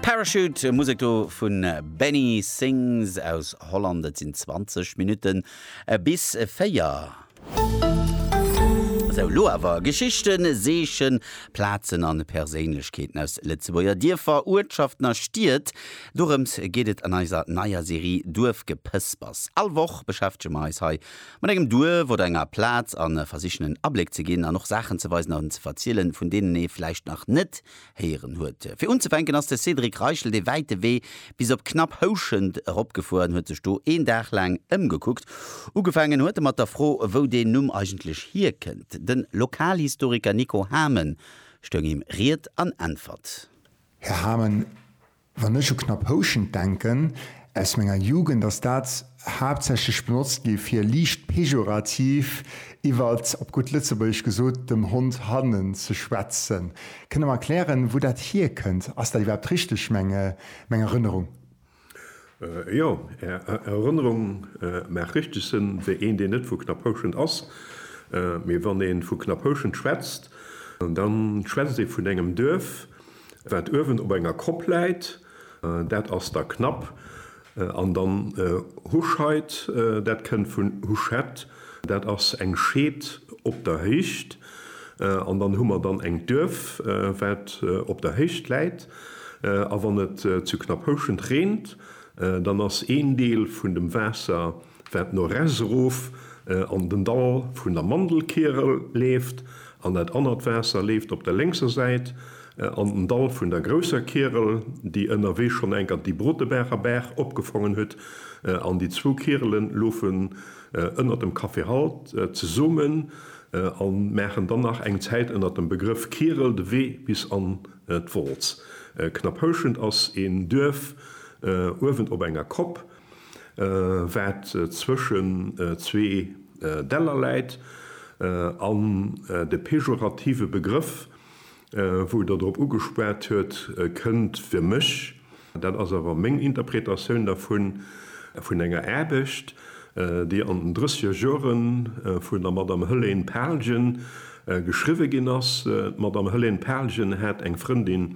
Parachute, Musek do vun Benny Sings aus Holland. Et sinn 20 Minutten bis 4. Sou, lo awer Geschichten, Seechen, Plazen an Perséinlechkeeten aus Lëtzebuerger Dierfer, Uertschaften a Stied. Dorëms geet et an eiser neier Serie Duerfgepëspers. All Woch beschäftege mer eis hei Mat engem Duerf oder enger Plaz a versichen en Abléck ze ginn an och Saachen ze weisen an ze verzielen, vun deenen ee vläicht nach net héieren huet. Fir unzefänken ass de Cédric Reichel dee wäite Wee bis op knapp Houschent eropgefuer an huet sech do een Dag laang ëmgekuckt. Ugefaangen huet e mat der Fro, wou deen Numm eigentlech hierkënnt. De Lokalhistoriker Nico Hamen stoung him Ried an Äntwert. Här Hamen, Wann ech u knapp Houschent denken aus menger Jugend, ass dat haaptsächlech benotzt gi fir liicht pejorativ iwwer, op gutt Lëtzebuergesch gesot, dem Hond hannen ze schwätzen. Kënnt Der mer erklären, wou dat hierkënnt? Ass dat iwwerhaapt richteg, meng Erënnerung? Jo, Är Erënnerung mag richteg sinn, fir een, deen net vu knapp Houschent ass. Mee wann ee vu knapp Houschent schwätzt, da schwätzt ee vun engem Duerf. Wat uewen op enger Kopp läit, dat ass da Knapp. An dann Huscheit, dat kënnt vun Huschett, dat ass eng Scheed op der Héicht. An dann hu mer dann eng Duerf, wat op der Héicht läit. A wann et zu Knapphouschent reent, dann ass een Deel vun dem Waasser, wat no rechts erof an den Dall vun der Mandelkierel leeft, an dat anert Waasser leeft op der lénkser Säit an den Dall vun der grousser Kierel, déi ënnerwee schonn eng Kand déi Brotebaacher Baach opgefongen huet, an déi zwou Kierele loufen ënnert dem Café Halt zesummen a maachen dann nach eng Zäit ënnert dem Begrëff Kierel de Wee bis an d'Wolz. Knapphouschent ass een Duerf uewen op enger Kopp. wat zwëschen zwee Däller läit, an de pejorative Begrëff, wou Der drop ugespat huet, kënnt fir mech, dat ass awer meng Interpretatioun dervun, vun enger Aarbecht, déi an den drëssiger Jore vun der Madame Hëlène Palgen geschriwwe ginn ass. D'Madame Hëlène Palgen hat eng Frëndin,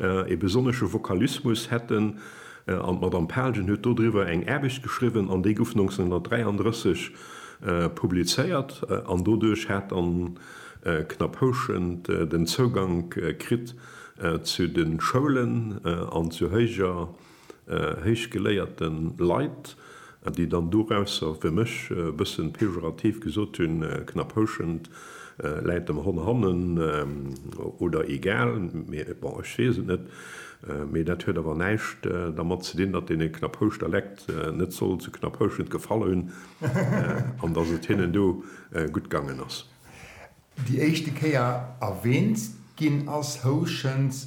Ee besonnesche Vokalismus hätt en, an d'Madame Palgen huet dodriwwer eng Aarbecht geschriwwen an déi gouf 1933 publizéiert an doduerch hat dann Knapphouschent den Zougank kritt zu de Schoulen an zu héijer héichgeléierte Leit, déi dann dorausser, fir mech e bëssen pejorativ gesot, hunn, knapp houschend, läit dem Hon hannen oder egal, mee bon, ech weess et net. Mee dat huet awer näischt dermat ze dinn, datt dee Knapphouschter leckt net soll zu Knapphouschend gefall hunn an datt et hinnen do gutt gaangen ass. Déi éischte Kéier erwähnt ginn ass, houschend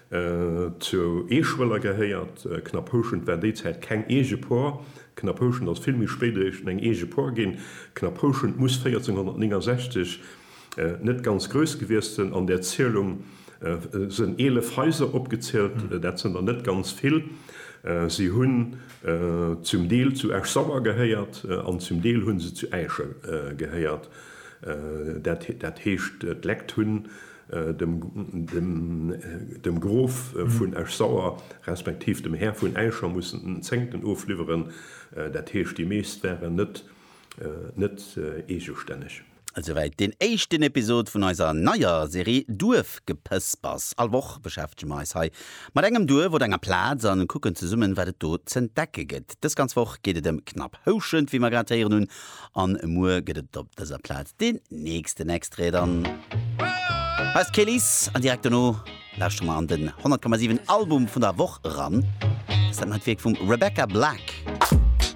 Zu Eeschwëller gehéiert Knapphouschent war déizäit keng eege Por. Knapphouschent ass vill méi spéit eréischt eng eege Por ginn. Knapphouschent muss 1469 net ganz grouss gewiescht sënn. An där Zielung sënn 11 Haiser opgezielt. Dat sënn der net ganz vill. Si hunn zum Deel zu Esch-Sauer gehéiert an zum Deel hunn se zu Äischen gehéiert. Dat heescht d'Lekt hunn dem Grof vun Esch-Sauer respektiv dem Här vun Äischer mussen en Zéngten ofliwweren, dat heescht déi meescht waren net eegestänneg. Esouwäit deen éischten Episod vun eiser neier Serie Duerfgepëspers. All Woch beschäftege mer eis hei mat engem Duerf oder enger Plaz a kucken zesummen, wat et do z'entdecke gëtt. Dës ganz Woch geet et ëm Knapphouschent, wéi mer grad héieren hunn, An muer gëtt et op dëser Plaz den nächsten Extrait. Dann hei ass d'Kelis an direkt dono lauschtere mer an den 100,7 Album vun der Woch eran. Dëst dat neit Wierk vum Rebecca Black.